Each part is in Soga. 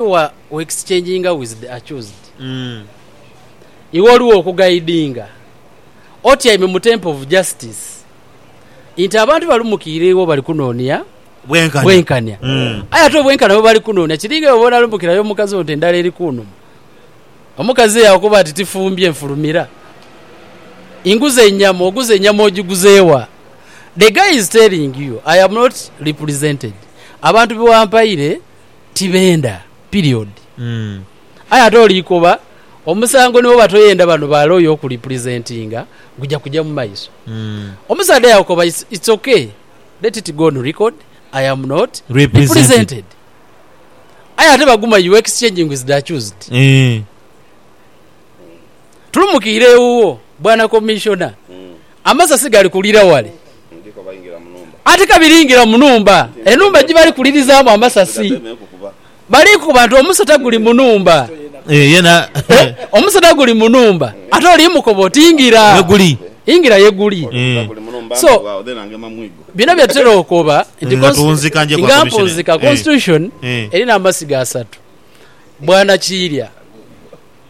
Wa u exchanginga with the accused, iwe oli wo kugaidinga otyaime mu temple of justice nti abantu balumukiire iwe bali kunoonia bwenkanya. Aye ate obwenkanya bwe bali kunoonia kiringa iwe bw'onalumukira yo mukazi wo nti endhala eri kunuma. Omukazi eyo akuba ati tifumbye nfulumira nguze enyama, oguze enyama ogiguze wa? The guy is telling you, I am not represented, abantu be wampaire Tibenda, period. Aye ate oliikoba omusango ni bwoba toyenda bano ba lawyer okurepresentinga guja kuja mu maiso. Omusaadha yakoba it's ok let it go on record I am not represented. Aye ate baguma you exchanging with the accused. Tulumukiire ewuwo bwana commissioner Amasasi gali kulira wale. Ate ka biringira mu nhumba, enhumba gye bali kulirizaamu amasasi. Bali kukoba nti, Omusota guli mu nhumba. Omusota guli mu nhumba. Ate oli mukoba oti, Ingira. Ingira ye guli. So, bino bye tutera okoba nti, Nga mpunzika Constitution erina amasiga asatu, bwanakiirya.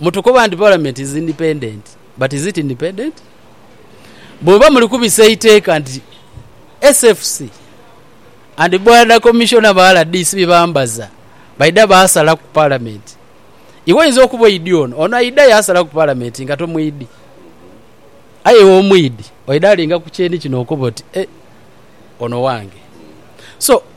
mutukoba nti Parliament is independent but is it independent? Bwoba muli kubisa eiteeka nti SFC and Border Commissioner ba rdc byebambaza baidha basala ku Parliament, iwe oyinza okuba oidhi ono, ono aidha yasala ku Parliament nga tomwidhi. Aye iwe omwidhi, oidha linga ku kyenikino okobe oti, eh, ono wange. So,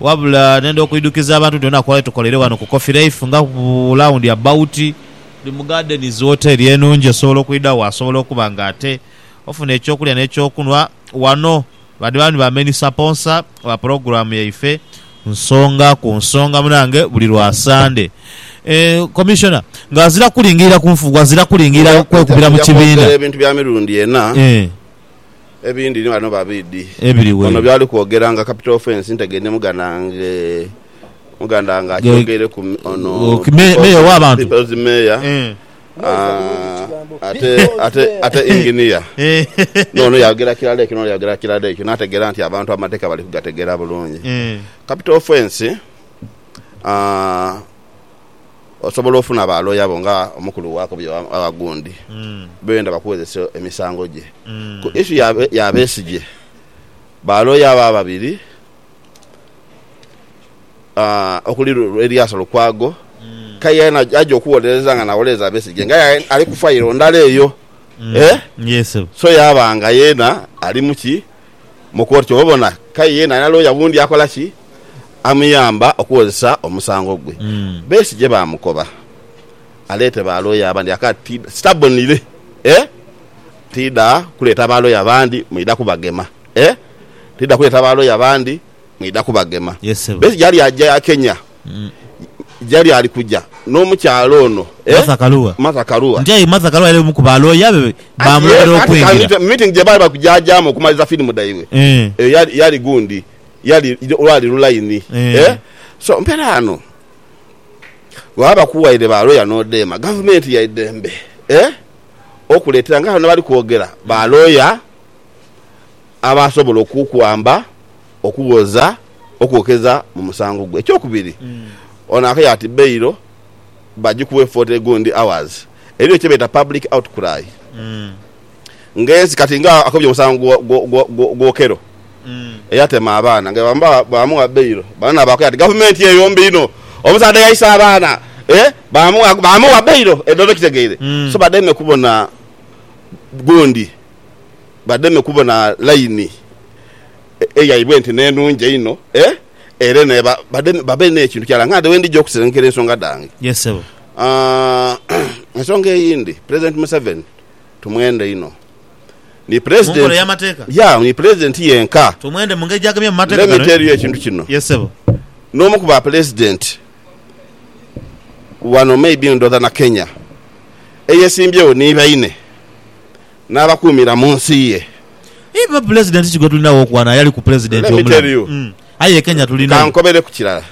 wabula nenda okwidhukiza abantu nti olinaku lwali tukoleire wano ku Coffee Life nga bu lawundi abawuti. Ndi mu Gardens woteri enungi osobola okwidha wo asobola okuba nga ate ofuna ekyokulya n'ekyokunhwa wano. Bandi bandi ba main saponsa ba pulogulamu yaife Nsonga ku Nsonga munange buli lwa Sande. Commissioner nga azira kulingirira kunfugu azira kulingirira kwekubira mu kibiina. Aja kwogera ebintu bya mirundi ena. Ebindi ni ghano babidi. Ebiri wee. Ono byali kwogera nga capital offence nte gende muganda nge muganda nge akyogeire ku ono mayor wa bantu people's mayor ate ate ate engineer no ono yayogera kilala ekyo no ono yayogera kilala ekyo nategera nti abantu amateka bali kugategera bulungi capital offence aah. Osobola ofuna ba looya bo nga omukulu wa Kobyo oba gundi b'oyenda bakuwozese emisango gye. Ku ishu ya Besigye, ba looya abo ababiri okuli Eriasa Lukwago k'aye yena aja okuwolereza nga nawolereza Besigye nga aye ali ku fayiro ndala eyo so yaaba nga yena ali mu ki? mu kooti. Kyobabona kaye yena alina looya wundi akola ki? Amuyamba okuwozesa omusango gwe. Besigye baamukoba aleete ba looya abandi aka ti sitabonire eh tiidha kuleeta ba looya bandi mwidha kubagema eh tiidha kuleeta ba looya bandi mwidha kubagema. Besigye ali aja Kenya Jali ali kuja n'omukyala ono, Martha Karua. Nti aye Martha Karua yali omu ku ba looya be baamulobera okwingira. Mu miitingi gye baali bali kujaajaamu okumaliriza firimu dhaibwe, eyo yali gundi, yali lwali lulaini. So, mpeera ghano, bwebaba bakuwaire ba looya n'odheema, gavumenti ya idembe okuleetera nga ghano ghebali kwogera ba looya. Aba asobola okukwamba, okughoza, okwokeza mu musango gwo. Ekyokubiri, ono akaire ati bail bagikuwe 40 gundi hours. Eriyo kyebeeta public outcry nga ensi kati nga akobye omusango gwa Okello eyatema abaana nga bwebaba bamugha bail banana bakoya ati gavumenti eyo mbi inho omusaadha yaisa abaana bamugha bail edho oba okitegeire so bademe kubona gundi. Bademe kubona laini eyaibwe nti n'enungi einho, era babe n'ekintu kirala nga nde we ndija okusirengekeira ensonga dhange. Ensonga eyindi, Pulezidenti Museveni tumwenda inho. Ni Pulezidenti yenka, let me tell you ekintu kino, n'omu ku Bapulezidenti wano maybe ndhooza na Kenya, eyesimbyewo ni baine. N'abakuumira mu nsi ye. Aye ba Pulezidenti ki gwe tulina w'okwana yali ku Pulezidenti omulamu? Aye e Kenya tulina. Ka nkobere ku kirala.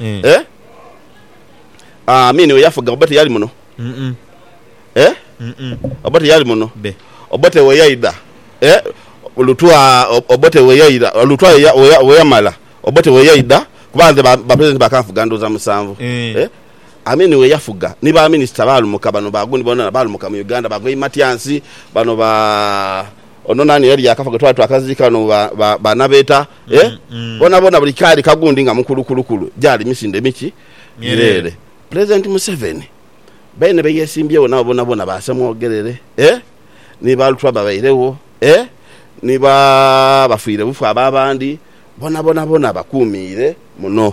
Amin we yafuga Obote yali muno? Obote yali muno? Obote we yaidha? Lutwa Obote we yaidha? Lutwa we yamala Obote we yaidha? Kuba nze ba Pulezidenti bakanfuga ndhuuza musanvu. Amin we yafuga ni ba minisita baalumuka. Bano ba gundi bonabona baalumuka mu Uganda. Ba Goi Matyansi, bano ba, ono nani eyali yaakafa gwe twali twakaziika ghano ba, ba Nabeeta, eh? Bonabona buli kaali ka gundi nga mukulukulukulu. Gyali misinde miki? Myereere. Pulezidenti Museveni baine be yeesimbyewo nabo bonabona ba Ssemwogerere, eh? Ni ba Lutwama bairegho, eh? Ni ba bafiirebufu abo abandi, Bonabona bona bakuumiire muno.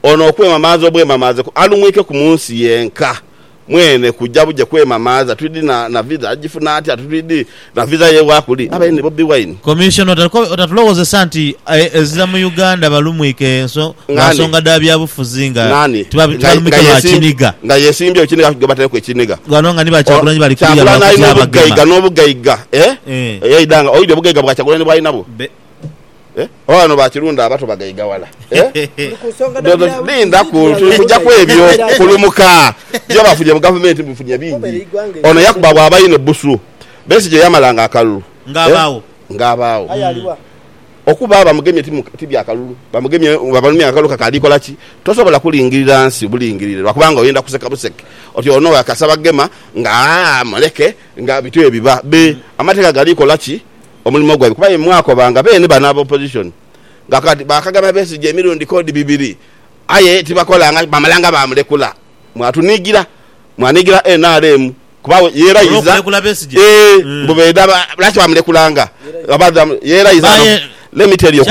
Ono okwemamaaza obwemamaaze kwe alumwiikeku mu nsi yenka mwene kuja buje kwemamaaza twidhi na na visa. Agifuna atya? Twidhi na visa ye wa kuli? Abaire ni Bobi Wine? Commissioner otatulowozesa nti ezira mu Uganda balumwike lwa nsonga dha byabufuzi nga tibalumwike lwa kiniga. Nga yesimbyewo kiniga gwe bataireku ekiniga. Bano nga ni ba Kyagulanyi bali kuliya lwa kutya abagema. Kyagulanyi alina obugaiga nobugaiga eeh eyaidha nga oidhi obugaiga bwa Kyagulanyi bwalina bwo. Eh? Oba bano bakirunda abato bagaiga wala. Eh? Linda ku kuja kwebyo kulumuka. Byo bafunye mu government bifunye bingi. Ono yakuba bwaba ine busu. Besi je yamala nga akalulu. Nga abawo. Eh? Nga abawo. Okuba abamugemye tibya kalulu. Bamugemye babalumya akalulu kakali kola ki? Tosobola kulingirira nsi bulingirire lwa kubanga oyenda kuseka buseke. Oti ono yakasaba gema nga aa muleke nga bityo ebiba. Be amateka gali kola ki? omulimo gwaibwe kuba aye mwakoba nga beene bano aba opposition nga kati baakagema Besigye emirundi k'odi bibiri aye tibakolanga bamala nga baamulekula. Mwatuniigira, mwaniigira nrm kuba ye erayiza eeh mbu beedha lwaki baamulekulanga ye erayiza no let me tell you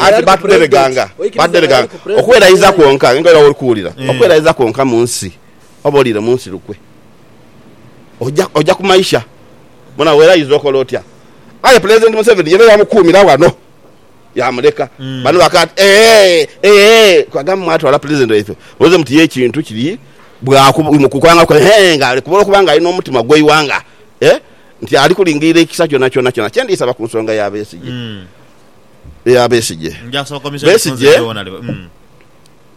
anti baatudhereganga baatudhereganga okwerayiza kwonka aye nga era woli kuwulira okwerayiza kwonka mu nsi oba oliire mu nsi lukwe oja oja kumaisha. Bona bw'era aidha okola otya? Aye Pulezidenti Museveni yena yamukuumira wano, yaamuleka. Bano bakaaba ati, Eehee! Eehee! Twagamba mwatwala Pulezidenti waife muloze muti ye ekintu kiri bwa kukwangaku eehee nga ali kubula okuba nga ali n'omutima gw'eighanga eeh nti ali kulingirira ekisa kyonakyona kyona kye ndiisaba ku nsonga ya Besigye. Eya Besigye. Besigye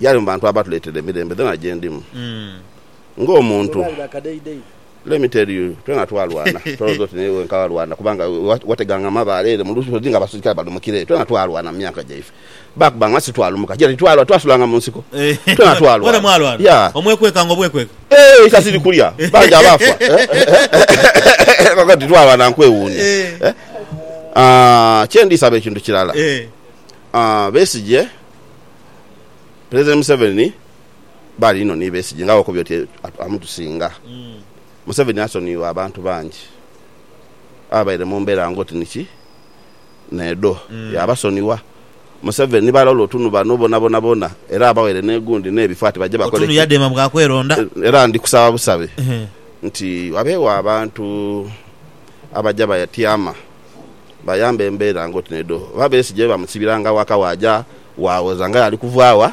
yali mu bantu abatuleetera emirembe dhona gye ndimu ng'omuntu. Let me tell you, twena twalwana. Tolooza oti naye wenka awalwana, kubanga wateganga mu mabaale ere mu lusozi nga abaserikale balumukira eyo. Twena twalwana mu myaka gyaife. Baakubba nga si twalumuka gye, titwalwa, twasulanga mu nsiko. Twena twalwana. Mwena mwalwana? Yeah. Omwekwekanga obwekweka? Eeh, eka ziri kulya. Bangi abaafa. Kaakati twalwana nkwewuunya. Eh? Ah, kye ndisaba ekintu kirala. Besigye, Pulezidenti Museveni, Baali inho ni besigye nga bw'okobye oti amutusinga. Museveni asonwirwa abantu bangi ababaire mu mbeera ng'oti ni ki n'edho, yaabasonigha. Museveni ni balola oti nu bano bonabona bona era abaweire n'egundi n'ebifo ati baje bakole ki? Era ndi kusaba busabe nti wabeegho abantu abaja batyama bayambe embeera ng'oti n'edho. Oba Besigye bamusibira nga waka waaja waawoza ng'aye ali kuva wa?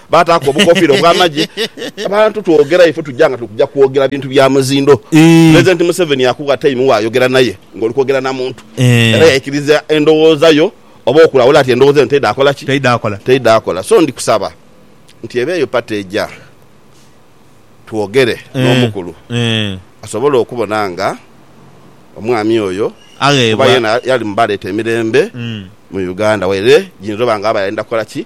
Baataaku obukofiira obw'amagye. Abantu twogera ife tuja nga tuli kuja kwogera bintu bya muzindo. Pulezidenti Museveni yakugha tayimu waayogera naye ng'oli kwogera na muntu era yaikiriza endowooza yo oba okulawula nti endowooza eno teidaakola ki? Teidaakola. So ndi kusaba nti eba eyo pati eija twogere n'omukulu asobole okubona nga omwami oyo kuba yeena yali mu baaleeta emirembe mu Uganda waire giyinza oba nga aba yayenda kukola ki?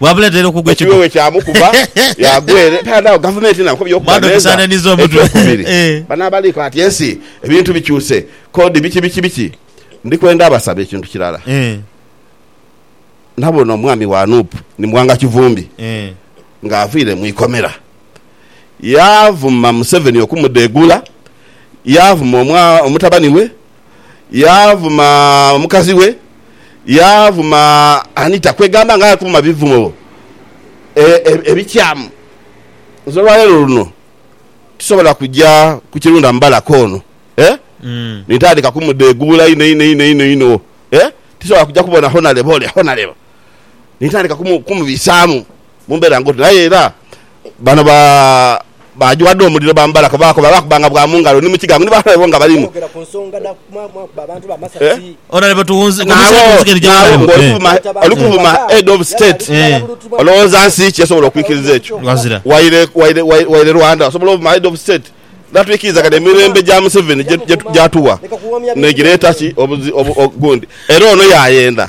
Bwamuleetera okugwa Ekyo ekigo. bwewekyaamukuba yaagwa ere taadha agho. Gavumenti nayo kobya okuba Mado n'enza bisananiza omutwe. eky'okubiri. Eh. Bano abaliiko ati ensi ebintu bikyuse, kodi biki biki biki. Ndi kwenda abasaba ekintu kirala. Eh. Nabona omwami wa nup ni Mwanga Kivumbi Eh. ng'aviire mu ikomera. Yaavuma Museveni okumudheegula, yaavuma omwa omutabani we yaavuma omukazi we, yaavuma Anita, kwegamba nga atuma bivumo e, e, ebikyamu. Nze olwaleero luno tisobola kuja ku kirunda mubalaka ono eh? mm. nintandika kumudegubula ino ino ino ino ino eh? tisobola kuja kubona honalebo ole honalebo nintandika kumubisaamu mumbeera ngoti naye era Bano ba baajwa dho omuliro bambala kwe baakoba baakuba nga bwa mu ngalo ni mu kigangu ni balabe bo nga balimu. Naagho naagho ng'oli kuvuma oli kuvuma Head of State olowooza nsi ki esobola okwikiriza ekyo? Waire waire waire Rwanda osobola ovuma Head of State n'atwikirizagana emirembe gya Museveni gye gye gyatuwa n'egireeta ki obuzi obu gundi era ono yaayenda.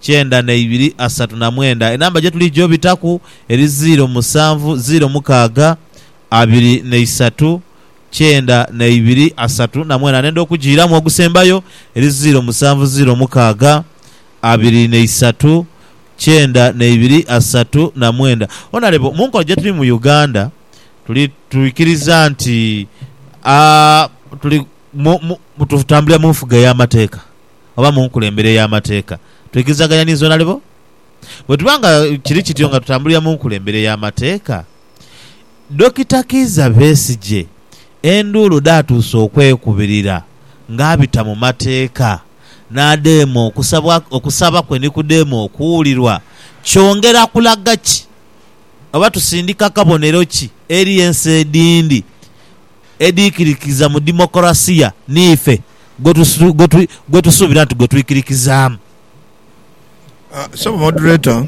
kyenda na ibiri asatu na mwenda enamba gye tuli gyobitaku eri ziiro musanvu ziiro mukaaga abiri na isatu kyenda na ibiri asatu na mwenda nenda okugiiramu ogusembayo eri ziiro musanvu ziiro mukaaga abiri na isatu kyenda na ibiri asatu na mwenda onalebo munkola gye tuli mu Uganda tuli tuikiriza nti a tuli mu mu tutambulira munfuga eya mateeka. oba mu nkulembere ey'amateeka, twigirizaganhia ni zoona alibo? Bwe tuba nga kiri kityo nga tutambulira mu nkulembere ey'amateeka, Dokita Kiiza Besigye enduulu dhaatuuse okwekubirira ng'abita mu mateeka n'adheema okusabwa okusaba kwe ni kudheema okuwulirwa. Kyongera kulaga ki oba tusindika kabonero ki eri ensi edhindi edhiikirikiza mu demokolasiya niife gwe tusuubira nti gwe twikirikizaamu. Ssebo Moderator,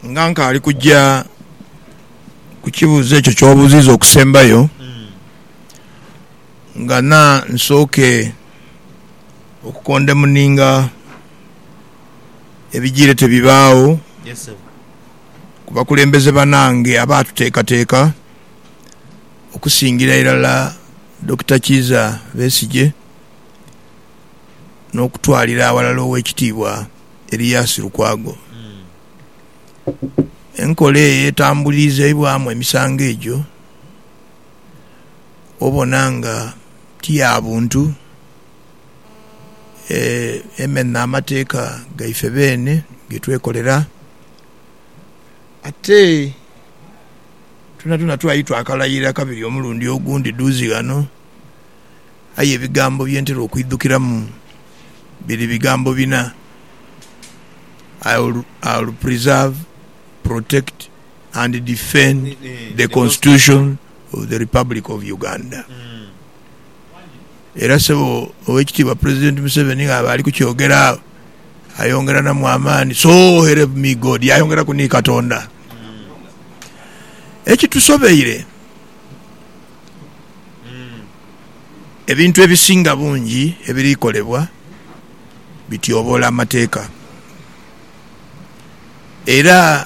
nga nkaali kuja ku kibuuzo ekyo ky'obuuziiza okusembayo, ngana nsooke okukondemuninga ebijiire tebibaagho. ku bakulembeze banange abaatuteekateeka okusingira irala Dokita Kiiza Besigye n'okutwalira aghalala Oweekitiibwa Erias Lukwago. Enkola eyo etambuliizaibwamu emisango egyo obona nga ti ya buntu, emenha amateeka gaife beene ge twekolera. Ate twonatwona twali twakalaira kabiri omulundi ogundi dhuuzi ghano, aye ebigambo bye ntera okwidhukiramu biri bigambo bina, I'll preserve, protect and defend the constitution of the Republic of Uganda. Era Ssebo Owekitiibwa President Museveni ng'aba ali kukyogera agho, ayongeranamu amaani, So help me God, yaayongeraku ni Katonda. Ekitusobeire, ebintu ebisinga bungi ebiri kolebwa bityoboola amateeka. Era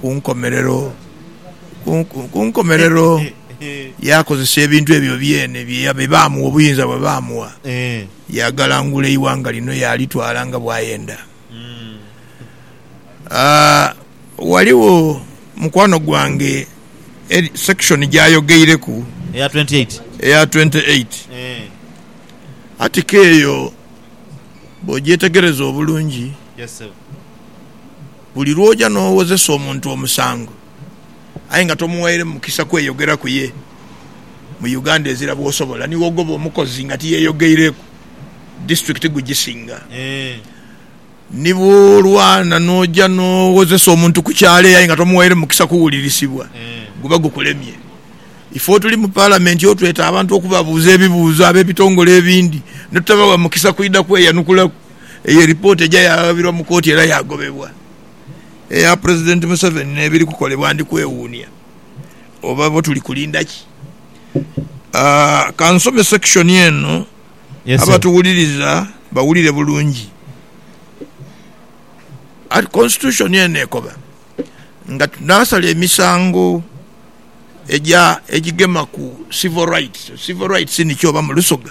ku nkomerero, ku nkomerero yaakozesa ebintu ebyo byeene bye baamugha, obuyinza bwe baamugha, yaagalangula eighanga lino yaalitwala nga bw'ayenda. Ghaligho mukwano gwange section gy'ayogeireku, eya twenty eight, eya twenty eight, article eyo bw'ogyetegereza obulungi, Buli lw'oja n'owozesa omuntu omusango aye nga tomughaire mukisa kweyogera ku ye, mu Uganda ezira bw'osobola ni wogoba omukozi nga tiyeyogeireku, disiturikiti gugisinga. Ni bw'olwana n'oja n'owozesa omuntu ku kyalo eyo aye nga tomughaire mukisa kuwulirisibwa, guba gukulemye. Ife otuli mu Palamenti otweta abantu okubabuuza ebibuuzo ab'ebitongole ebindi ne tutabawa mukisa kwidha kweyanukulaku. Eyo lipooti eja yaaghabirwa mu kooti era yaagobebwa. Eya Pulezidenti Museveni n'ebiri kukolebwa ndi kwewuunia oba bo tuli kulinda ki? Ka nsome section eno abatuwuliriza bawulire bulungi. Constitution eno ekoba nga tunaasala emisango egigema ku civil rights. Civil rights niki oba mu Lusoga?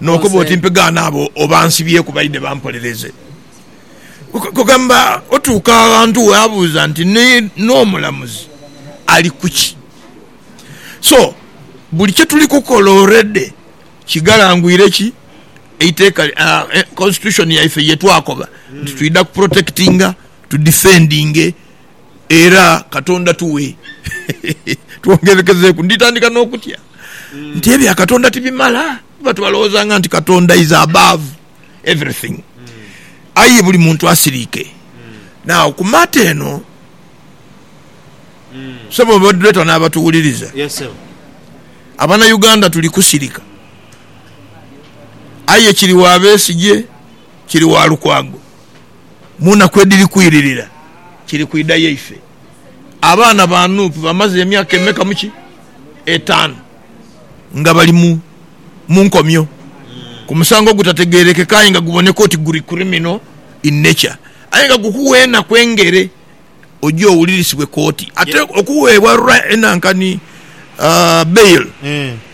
N'okoba oti, Mpegaana abo abansibyeku baidhe bampolereze. Kugamba otuuka aghantu waabuuza nti, Ni n'omulamuzi ali ku ki? So, buli kye tuli kukola already kighalangwire ki? Eiteeka, Constitution yaife ye twakoba nti twidha ku protectinga, tu defendinge Era Katonda tuwe twongerekezeeku. Nditandika n'okutya nti ebya Katonda tibimala. Tuba twalowoozanga nti Katonda is above everything. Aye buli muntu asiriike. Now ku matter eno, ssebo moderator n'abatuwuliriza, Abanauganda tuli kusirika. Aye kiri wa Besigye, kiri wa Lukwago, mu naku edhiri kwiririra kiri kwidha yaife. Abaana ba Nuupu bamaze emyaka emeka mu ki? Etaanu nga bali mu mu nkomyo ku musango ogutategerekeka aye nga guboneka oti guri criminal in nature aye nga gukugha enaku engere oje owulirisibwe kooti ate okuweebwa ra enanka ni bail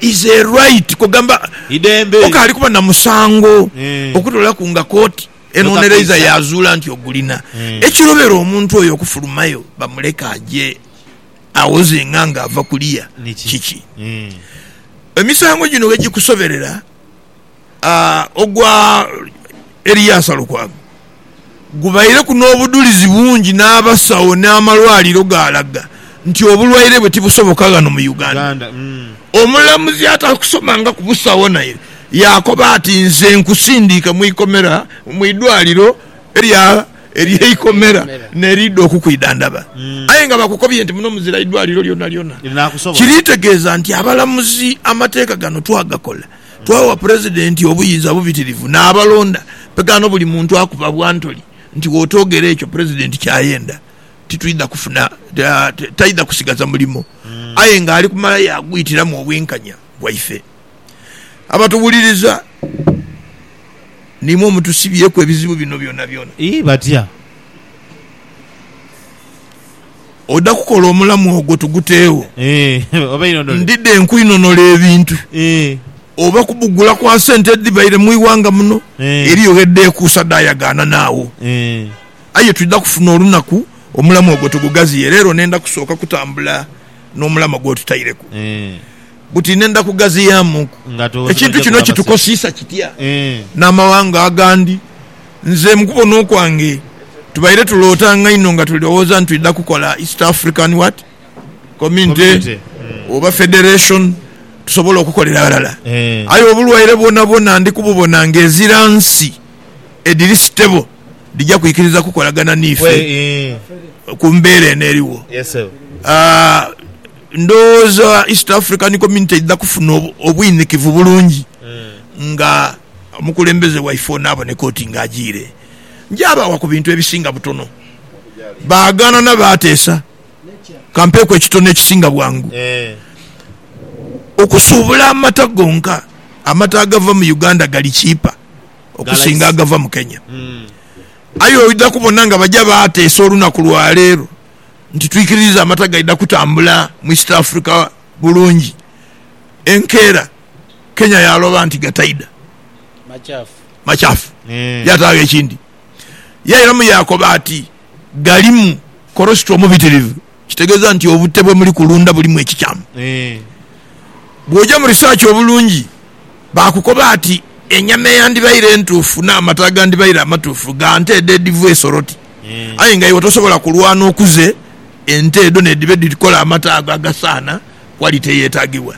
is a right kwegamba Idembe. okaali kuba na musango okutoolaku nga kooti Enonereiza yaazuula nti ogulina. Ekirobera omuntu oyo okufulumayo bamuleke aje awoze nga ng'ava kuliya kiki? Emisango gino bwe gikusoberera, ogwa Eriasa Lukwago gubaireku n'obudhulizi bungi n'abasawo n'amalwaliro gaalaga. nti obulwaire bwe tibusoboka ghano mu Uganda. Omulamuzi atakusomangaku busawo naire yaakoba ati, Nze nkusindiike mu ikomera mu idwaliro ery'eikomera n'eridha okukwidhandhaba. Aye nga bakukobye nti muno muzira idwaliro lyonalyona. Kiri tegeeza nti abalamuzi amateeka gano twagakola, twawa Pulezidenti obuyinza obubitirivu n'abalonda. Ghano buli muntu akuba bwa ntoli nti w'otoogera ekyo Pulezidenti ky'ayenda. titwidha kufuna, taidha kusigaza mulimo, aye ng'ali kumala yaagwitiramu obwenkanya bwaife. Abatuwuliriza niimwe omutusibyeku ebizibu bino byonabyona. Ii, Batya? Oda kukola omulamu ogwo tuguteegho? Ee, oba inonole. Ndidha enkuinonole ebintu. Ee. Oba kubugula kwa sente edhibaire mu ighanga muno. Ee. Eriyo gh'edha ekuusa dhaayagaana naagho. Ee. Aye twidha kufuna olunaku omulamu ogwo tugugaziye. Leero nenda kusooka kutambula n'omulama gw'otutaireku buti nenda kugaziyaamu nku ekintu kino kitukosiisa kitya n'amawanga agandi. Nze mu kubona okwange tubaire tulootanga inho nga tulowooza nti twidha kukola East African what? Community oba Federation tusobole okukolera ghalala. Aye obulwaire bwonabwona ndi kububona ng'ezira nsi edhiri stable. dhija kwikiriza kukolagana n'ife ku mbeera eno eriwo. Ndhowooza East African Community eidha kufuna obwinikivu bulungi nga omukulembeze waife ono aboneka oti nga ajiire. Njaabaagha ku bintu ebisinga butono, baagaana na baateesa. Kampeeku ekitono ekisinga bwangu. Okusuubula amata gonka, amata agava mu Uganda gali chiipa. okusinga agava mu Kenya. Aye oidha kubona nga baja baateesa olunaku lwa leero nti twikiririza amata gaidha kutambula mu East Africa bulungi, enkeera Kenya yaaloba nti gataidha, makyafu. Yaataagho ekindi yairamu yaakoba ati, Galimu kolosito omubitirivu. Kitegeeza nti obute bwe muli kulunda bulimu ekikyamu. Bw'oja mu research obulungi, baakukoba ati enyama eyandibaire entuufu n'amata agandibaire amatuufu ga nte edho edhiva e Soroti. Aye nga iwe tosobola kulwana okuze ente edho n'edhiba edhikola amata ago agasaana quality eyeetaagibwa.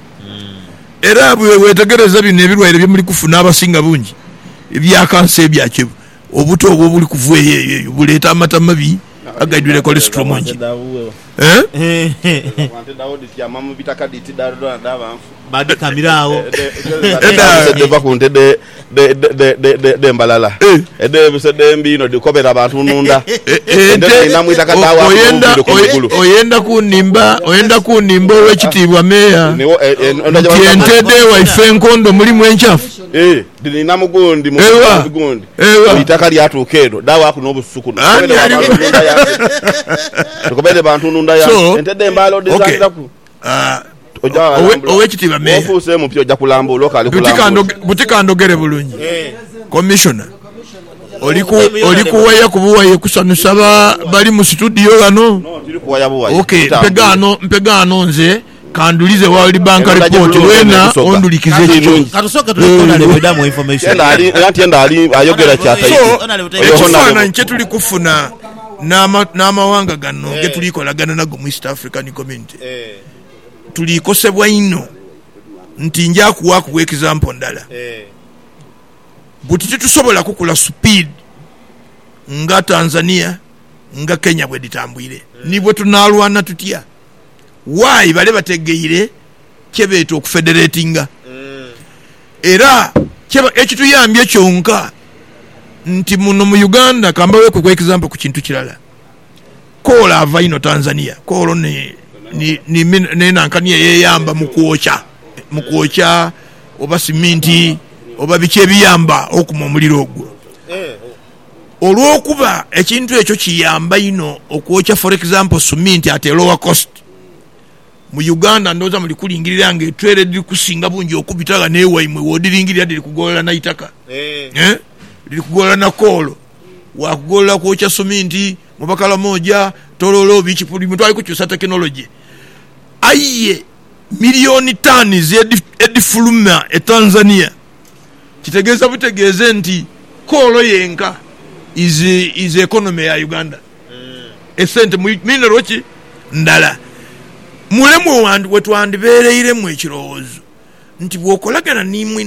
Era bwe weetegereza bino ebilwaire bye muli kufuna abasinga bungi bya kansa ebyakyo Obuta obwo obuli kuva eyo eyo eyo buleeta amata amabi agaidhwire cholesterol mungi. Oyenda kunimba oyenda kunimba Owekitiibwa Meeya nti ente dh'ewaife enkondo mulimu enchafu? Dhininha mu gundi mu bwinzi gundi, buli itaka lyatuuka eno, dhaawaaku n'obusuku. Tugobere bantu ndunda yange, tugobere bantu ndunda yange. Ente dh'embaale odhizaniraku, oja walambula. Bw'ofuuse mupya oja kulambuula okaali kulambula. Buti kandhogere bulungi, Commissioner oli kuwaya ku buwaye kusanhusa bali mu situdiyo ghano? Mpegha ghano nze. Kandhulize World Bank Report weena ondhulikize ekyo. So, ekifaananyi kye tuli kufuna n'amawanga gano ge tuli kolagana nago mu East African Community, tuli kosebwa inho nti nja kuwaaku egizampo ndala buti titusobola kukula supiidi nga Tanzania, nga Kenya bwedhitambuire. Ni bwe tunaalwana tutya why bale bategeire kye beeta okufederatinga era kye ekituyambye kyonka nti muno mu Uganda kambaweku ku example ku kintu kirala Koola ava inho Tanzania Koolo ni ni ni ni nankani eyeyamba mu kwokya mu kwokya oba siminti oba biki ebiyamba okuma omuliro ogwo. olw'okuba ekintu ekyo kiyamba inho okwokya for example suminti at a lower cost. Mu Uganda ndhooza muli kulingirira nga etweela edhiri kusinga bungi okubita ghano ewaimwe wodhiringirira dhiri kugolola na itaka eeh dhiri kugolola na koolo waakugolola kwokya suminti mu Bakalamoja, Tororo, biki buli muntu ali kukyusa technology aye million tons edhifuluma e Tanzania. kitegeeza butegeeze nti koolo yenka is is economy ya Uganda esente mu mineral ki ndala mulemwa wetwandibeereiremu ekirowoozo nti bwokolagana ni mwine